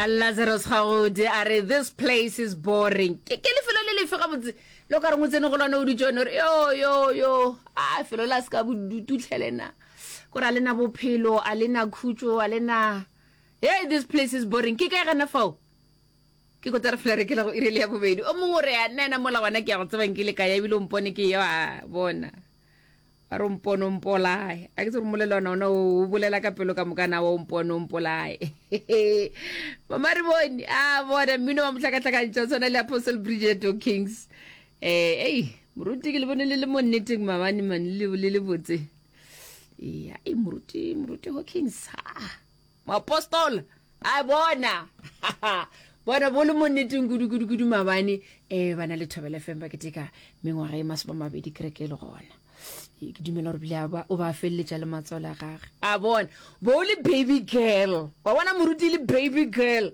lazarus gagodi a re this place is boring ke ke lefelo le lefe gabotse lo ka reng o tsene go lone o dutse one ore yo yo yo a felo la se ka bodututlhelena kore a lena bophelo a lena khutso a lena hey this place is boring ke kae gana fao ke kota re fela re kela go irele ya bobedi o mongwe o re a nna ena mola gona ke ya go tsebang ke le ka ya ebile o mpone ke yo a bona a re mpono mpolae a ke tsere molelwana ona o bolela ka pelo ka moka nawa o mpono mpolae mama re bone a bona mmino wa motlhakatlhakantšha o tshwana le apostle bridget o kings um ei moruti ke le bone le le mo nneteng mabane mane le le botse ea e moruti moruti ho kings a moapostola a bona bona bo le mo nneteng kudu-kudu-kudu mabane um ba na le thobele fm ba keteka mengwaga e masome a mabedi kereke e le gona ke dumela gore bile o ba feleletša le matsola gage a bona bo o le baby girl wa bona moruti le baby girl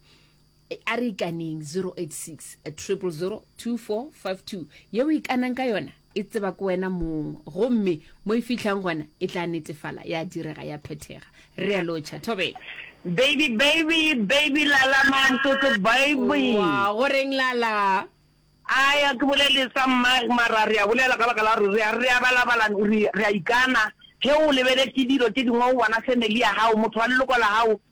a re ikaneng 0860002452 yeo e ikanang ka yona e tseba ke wena mong gomme mo e fitlhang gona e tla netefala ya direga ya phethega re a lotšha thobela baby baby baby lala mantotlo baby wa go reng lala aya ke bolele sa mma mara re a bolela ka baka la gore re a re a balabala re a ikana ge o lebeletse dilo tse dingwe o bona family ya gago motho wa leloko la gago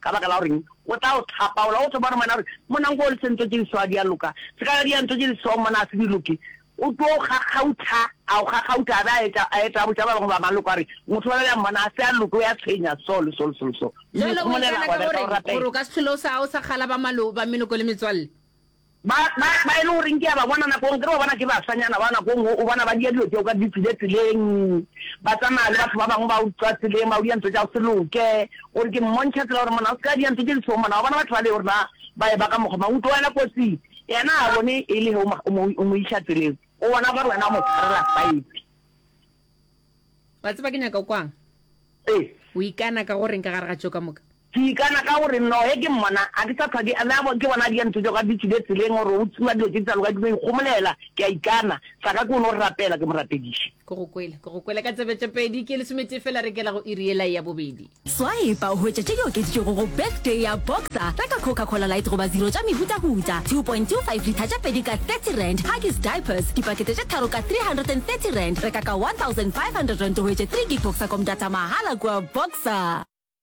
Ka baka la gore eng? O tla o hlapaola, o tlo bona monna gore monna nko o le sentso tše diswa di a loka, se ka di a ntso tše diswa monna a se di loke. O tlo o kgakgautha, a o kgakgautha a be a etša, a etša a botša ba bangwe ba maloko a re motho wa bjale a mmona a se a loke, o ya tshwenya so le so le so le so. Mme Jwale o ikana ka go reng gore o ka se hlole o sa, o sa kgala ba malo, ba meloko le metswalle? Ba, ba, ba e le goreng ke a ba bona nako nngwe, ke re ba bona ke basanyana ba nako nngwe, o bona ba dia dilo tšeo ka ditsile tseleng, ba tsamaya le batho ba bangwe ba utswa tseleng, ba udia ntho tša go se loke, o re ke mmontšha tsela gore monna o se ka dia ntho tše di sego monna, wa bona batho bale o re ba, ba eba ka mokgwa mang, o tlogelwa kotsing, yena ga a bone e le ge o mo, o mo, o mo iša tseleng, o bona gore wena o mo tshwarela saete. Wa tseba ke nyaka go kwang? Ee. O ikana ka go reng ka gare ga tšeo ka moka? Ke ikana ka gore no ge ke mmona ga ke sa hlwa ke na ke bona di ntho tšeo ga di tswile tseleng gore o tsewa dilo tše di sa loka ke no ikgomolela ke a ikana sa ka ke no rapela ke mo rapediše. Ke go kwele, ke go kwele ka tsebetšopedi ke lesometee fela re kela go iri yela ya bobedi. Swaepa o hwetša tše di okeditšwego go Birthday ya Boxer, reka Coca Cola Light goba Zero tša mehutahuta, 2.25 litha tše pedi ka R30, Huggies Diapers, dipakete tše tharo ka R330, reka ka R1,500 o hwetše 3 gig Boxer Com Data mahala kua Boxer.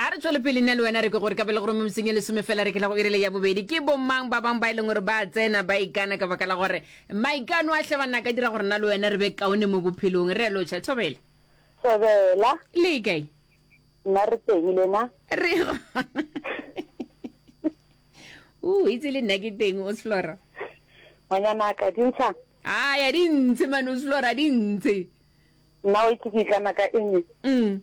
A re tšwele pele nna le wena re ke gore ka bele gore mo meseng e lesome fela re ke tla go irele ya bobedi ke bomang ba bang ba e leng gore ba tsena ba ikana ka baka la gore maikano a hle ba nna ka dira gore nna le wena re be kaone mo bophelong re lo tšha thobela Thobela. Le kae? Nna re teng le na? Re gona. O itse le nna ke teng o Sflora. Ngwanyana ka dintsha. Ah ya dintshe mane o Sflora dintshe. Nna o itse ke itlana ka eng? Mm.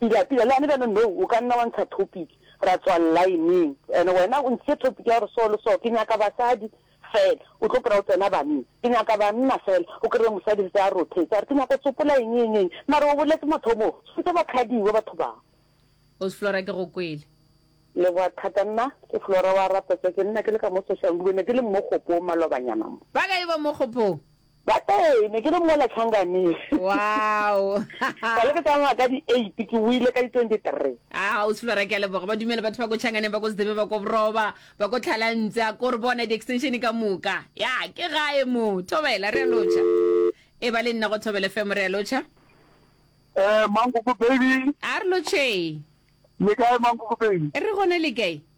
Pila, pila, le gane bjalo, no, o ka nna wa ntsha topic, ra tswa line-ing, and wena o ntshitše topic ya gore so le so, ke nyaka basadi fela, o tlo pora o tsena banna, ke nyaka banna fela, o kry-e mosadi se a rothetse a re ke nyaka go tsopola eng, eng, eng, mara o boletse mathomo, sentse ba khadiwa batho bao. Ausi Flora ke go kwele. Leboga thata, nna ke Flora wa Rapetse, ke nna ke le ka mo Soshanguve, ne ke le mmo kgopong malobanyana mo. Ba kae ba mo kgopong? Ba ee, ne ke le mola Changamire. Wow! Ka le ke tsamaya ka di-eight, ke wile ka di-twenty-three. A ga o se lora ke a leboga ba dumele batho ba ko Changaneng ba ko Sedebe ba ko Boroba ba ko Tlhalantse a ko re bona di-extension ka moka ya ke gae mo thobela re a lotšha e ba le nna go thobele femo re a lotšha Eh, Mankoko baby. A re lotšhee. Le kae Mankoko baby? Re gone le kae?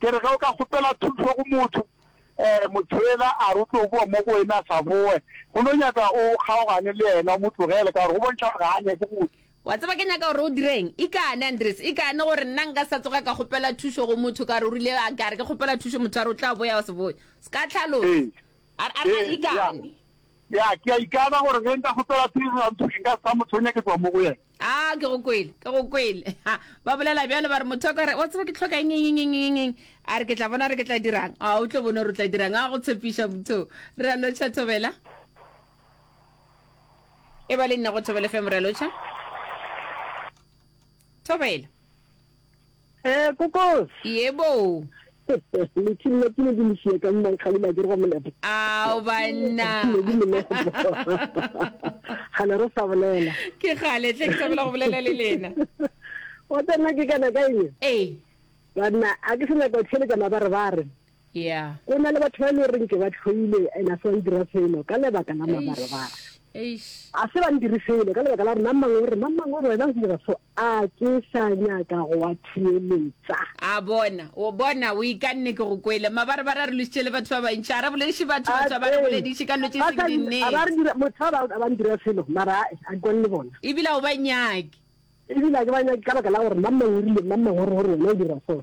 Ke re ge o ka kgopela thušo go motho, motho yola a re o tlo boa mo go wena a sa boe, go no nyaka o kgaogane le yena, o mo tlogele ka gore go bontšha gore ga a nyake go go. Wa tseba ke nyaka gore o direng? Ikane, Andries, ikane gore nna nka sa tsoga ka kgopela thušo go motho ka gore o rile a ka re ke kgopela thušo motho a re o tla boya o se boe. Se ka tlhalosa. Ee. A re a re a ikane. Ya, ke a ikana gore ge nka kgopela thušo ya motho nka se sa mo tshwenya ke tloga mo go yena. a ke go kwele ke go kwele Ha, ba bolela bjalo ba re motho wa ka re wa tseba ke tlhoka eng eng eng eng eng eng a re ke tla bona re ke tla dirang a o tlo bone gore o tla dirang a go tshepiša motho re a lotšha thobela e ba le nna go thobela fm re a lotšha thobela Eh, kokos. Yebo. Leching la kile ke le šiye ka mmang ga lila ke go molepo. Ao banna. Ga le re sa bolela. Ke gale tle ke sabela go bolela le lena. O tsena ke kana ka eng? Eh. Banna a ke se nyaka o theletša mabarebare. Yeah. Go na le batho ba e le goreng ke ba tlhoile and a se ba ndira selo ka lebaka la mabarabara. Eish. A se ba ndire selo ka lebaka la gore mang mang o re mang mang o re wena o dira so a ke sa nyaka go wa thiyeletsa. A bona, o bona o ikanne ke go kwele. Mabarabara re lositše le batho ba bantši. A re bolediše batho, batho a ba re bolediše ka dilo tše seng di nnete. A ba re dira motho ba ba ndira selo mara a ke kwane le bona. Ebile a o ba nyake. Ebile a ke ba nyake ka baka la gore mang mang o rile mang mang o re gore wena o dira so.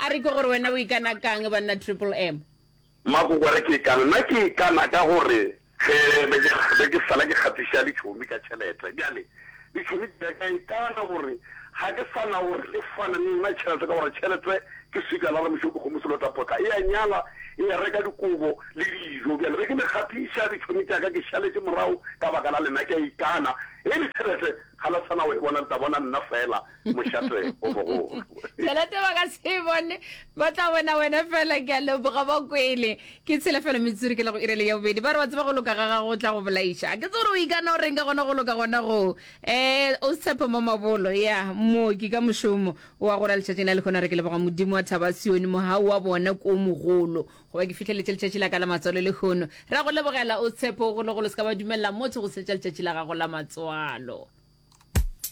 A re ke gore wena o ikana ka'ng banna Triple M? Makoko a re ke ikana, nna ke ikana ka gore ge be ke be ke sala ke kgatiša ditšhomi ka tšhelete bjale ditšhomi tša ka ikana gore ga ke sa na gore di fane le nna tšhelete ka gore tšhelete ke sika la ramošo dikgomo selotapotla e a nyala e a reka dikobo le dijo bjale be ke le kgatiša ditšhomi tša ka ke šaletše morago ka baka la lena ke a ikana e le tšhelete ga la sa na go e bona le tla bona nna fela mošate o mogolo tšhelete ba ka se e bone ba tla bona wena fela ke a leboga ba kwele ke tshelefelo metsuri ke le go irele ya bobedi ba re ba tseba go loka ga gago o tla go bolaiša ke tse gore o ikana o reng ka gona go loka gona goo um o setshepo mo mabolo ya mooki ka mošomo wa gora letšatšing la le kgona re ke leboga modimo wa thaba sione mogau wa bona ko mogolo goba ke fitlheletse letšatši la ka la matswalo le kgono ra go lebogela o tshepo golo golo se ka ba dumelela motho go setša letšatši la gago la matswalo